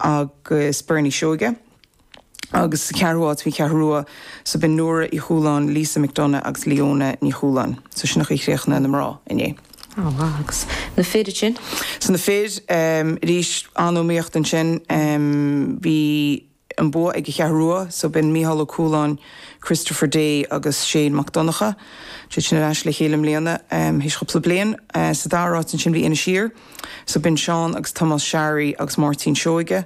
agus Bernie Seoige, agus sa cheathrú áit bhí Cheathrú Rua, so b'in Nóra Uí Chualáin, Lisa McDonagh agus Leona Ní Chualáin. So sin a chaoi a chríochnaigh na mná inné. Ó wow agus na fir ansin? So na fir, arís an-iomaíocht ansin, bhí an bua ag an Cheathrú Rua, so b'in Micheál Ó Cualáin, Christopher Day agus Shane Mac Donncha, iad sin ar ais le chéile i mbliana, th'éis chúpla bliain. Sa dara áit ansin bhí Inis Oírr. so b'in Seán agus Tomás Searraigh agus Máirtín Seoige,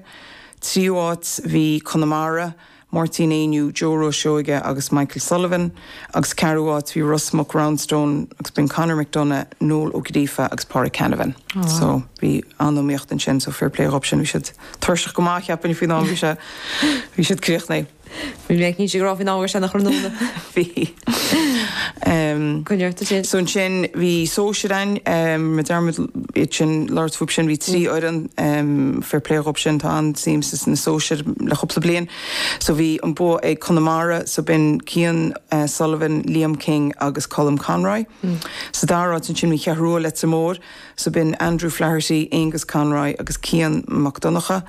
3ú áit, bhí Conamara, Máirtín Éinniú, Joe Rua Seoige agus Michael Sullivan, agus 4ú áit, bhí Ros Muc, Roundstone agus b'in Conor McDonagh, Noel Ó Gríofa agus Páraic Canavan. So, bhí an-iomaíocht ansin, so fair play dhóibhsean, bhí siad tuirseach go maith cheapfainn faoin am bhí sé, bhí siad críochnaithe. Bhí mé ag cinnt go raibh faoin ábhar sin a chur in iúl. Bhí. Coinne ort ansin. So ansin bhí sóisir ann, mar a deir muid, iad sin, Lawrence Foop sin, bhí trí fhoireann, fair play dhób sin, tá an-suim sna sóisir le cúpla bliain. So bhí an bua ag Conamara, so b'in Cian Sullivan, Liam King agus Colm Conroy. Sa dara áit ansin bhí Cheathrú Rua, Leitir Móir, so b'in Andrew Flaherty, Aengus Conroy agus Cian Mac Donncha.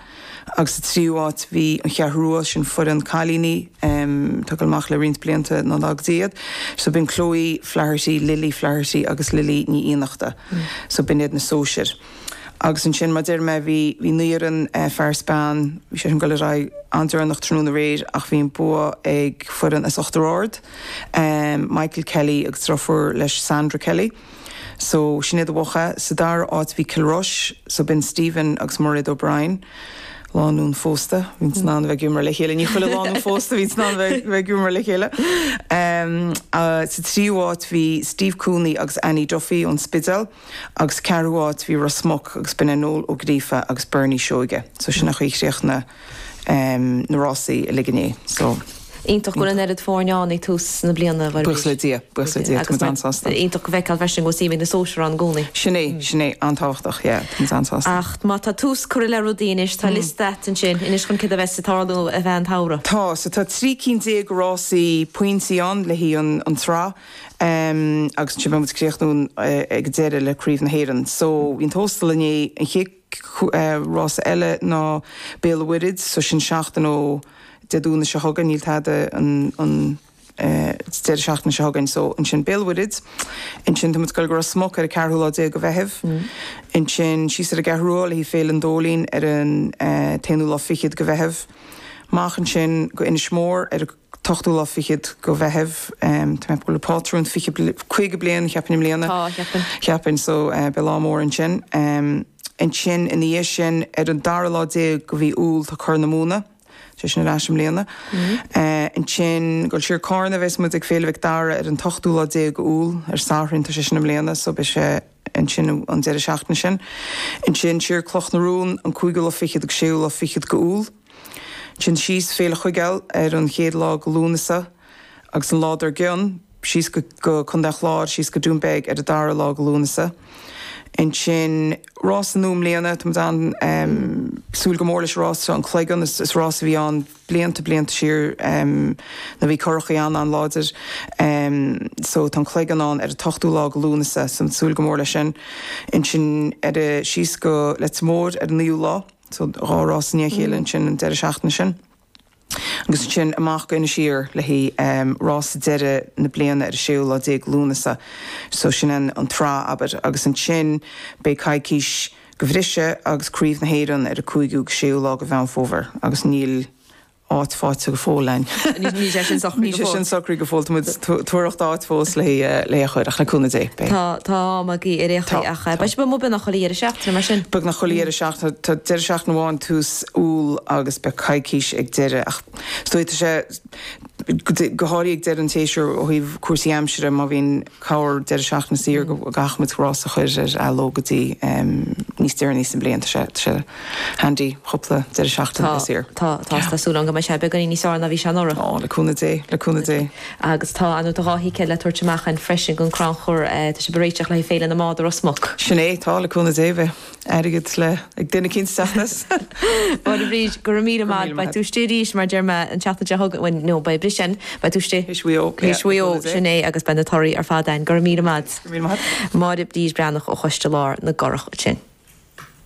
agus sa tríú áit bhí an Cheathrú Rua, sin foireann cailíní ag goil amach le roinnt blianta na Lag Dead so b'in Chloe Flaherty, Lily Flaherty agus Lily Ní Fhiannachta so b'in iad na sóisir agus ansin mar deir mé bhí bhí naoi bhfoireann fear is bean bhí sé sin go leor, raibh an-deireanach tráthnóna aréir ach bhí an bua ag foireann as Uachtar Ard Michael Kelly agus driofúr leis Sandra Kelly. So, sin iad a bhuaigh. Sa dara áit bhí Cill Rois, so b'in Stephen agus Mairéad O'Brien, lánúin phósta, bíonn siad in ann a bheith ag iomradh le chéile, ní chuile lánúin phósta a bhíonns in ann a bheith ag iomradh le chéile. Sa tríú háit bhí Steve Cooney agus Annie Duffy ón Spidéal agus sa cheathrú háit bhí Ros Muc agus b'in é Noel Ó Gríofa agus Bernie Seoige. So sin a chaoi a chríochnaigh na. na rásaí uilig inné so. Iontach go bhfuil an oiread foirne ann ag tús na bliana a Mhuiris. Buíochas le Dia, buíochas le Dia, tá muid an-sásta. Iontach a fheiceáil freisin go bhfuil suim ag na sóisir ann i gcónaí. Sin é, sin é, an-tábhachtach, yeah, tá muid an-sásta. Ach má tá tús curtha le rudaí anois, tá liosta agat ansin anois chun céard a bheas ag tarlú ar feadh an tsamhraidh. Tá, so tá trí cinn déag de rásaí pointí ann le haghaidh an an tsraith agus ansin beidh muid ag críochnú ag an deireadh le Craobh na hÉireann. So bhí an Tóstal inné, an chéad, Rás eile ná Béal a'Mhuirid, so sin seachtain ó Dé Domhnaigh seo chugainn, níl tada an deireadh seachtaine seo chugainn, so ansin Béal a'Mhuirid, ansin tá muid ag goil go Ros Muc ar an 4ú lá déag de Mheitheamh, ansin síos ar an gCeathrú Rua le haghaidh Féile an Dóilín ar an t-aonú lá fichead de Mheitheamh, amach ansin go Inis Mór ar an. t-ochtú lá fichead go Mheitheamh. Tá mé ag bualadh pátrún fiche, caoga bliain, cheapainn, i mbliana. Tá, cheapainn. Cheapainn, so beidh lá mór ansin. Ansin ina dhiaidh sin, ar an dara lá déag go mhí Iúil, tá Corr na Móna, sé sin ar ais i mbliana. Ansin, dul siar Carna, bheas muid ag Féile Mhic Dara ar an t-ochtú lá déag go Iúil, ar Satharn, tá sé sin i mbliana, so beidh sé, ansin an deireadh seachtaine sin. Ansin siar Cloch na Rón an cúigiú lá fichead agus séú lá fichead go Iúil. Ansin síos Féile Chuigéil ar an chéad lá go Lúnasa agus an lá dar gcionn, síos go Contae an Chláir, síos go Dún Beag ar an dara lá go Lúnasa. Ansin rás nua i mbliana, tá muid ag súil go mór leis an rás seo, an Cloigeann, is rás a bhí ann, blianta blianta siar nuair a bhí curachaí an-an-láidir so tá an cloigeann ann ar an t-ochtú lá go Lúnasa so súil go mór leis sin. Ansin ar ais síos go Leitir Móir ar an naoú lá so dhá rás i ndiaidh a chéile ansin an deireadh seachtaine sin agus ansin amach go Inis Oírr le haghaidh rás deireadh na bliana ar an séú lá déag Lúnasa so sin an an tsraith abair agus ansin beidh coicís go bhriseadh agus Craobh na hÉireann ar an 5ú agus 6ú lá de Mheán Fómhair agus níl áit faighte go fóill ann. Níl sé sin socraithe go fóill. Níl sé sin socraithe go fóill. Tá muid ag tóraíocht áit fós le hé a chur ach le cúnamh Dé beidh. Tá am agaí ar éacht ach beidh sé beagnach chuile dheireadh seachtaine mar sin. Beagnach chuile dheireadh seachtaine. Tá deireadh seachtaine amháin tús Iúil agus beidh coicís ag deireadh ach is dóigh tá sé, go háirithe ag deireadh an tséasúir ó thaobh cúrsaí aimsire, má bhíonn corr deireadh seachtaine saor go gcaithfidh muid rás a chur ar athló go dtí níos deireanaí sa bhliain. Tá sé handy cúpla deireadh seachtaine a bheith saor. Tá, tá. Tá súil agam go mbeidh sé beagáinín níos fearr ná bhí sé anuraidh. Ó, le cúnamh Dé, le cúnamh Dé. Agus tá, inniu tá dhá thicéad le tabhairt amach a'inn freisin don crannchur atá sibh ag réiteach le haghaidh Féile na mBád i Ros Muc? Sin é, tá, le cúnamh Dé. Beidh. airgead le ag duine eicínt sa teachtas. Bhuel, Bríd, go raibh míle maith. Beidh tú istigh arís, mar deir mé, an tseachtain seo chugainn, bhuel, nó beidh briseadh ann, beidh tú istigh. Théis Mhaigh Eo, yeah. Théis Mhaigh Eo, sin é, agus beidh na torthaí ar fad ann. Go raibh míle maith. Go raibh míle maith. Máire Bríd Breathnach ó Choiste Lár na gCurachaí ansin.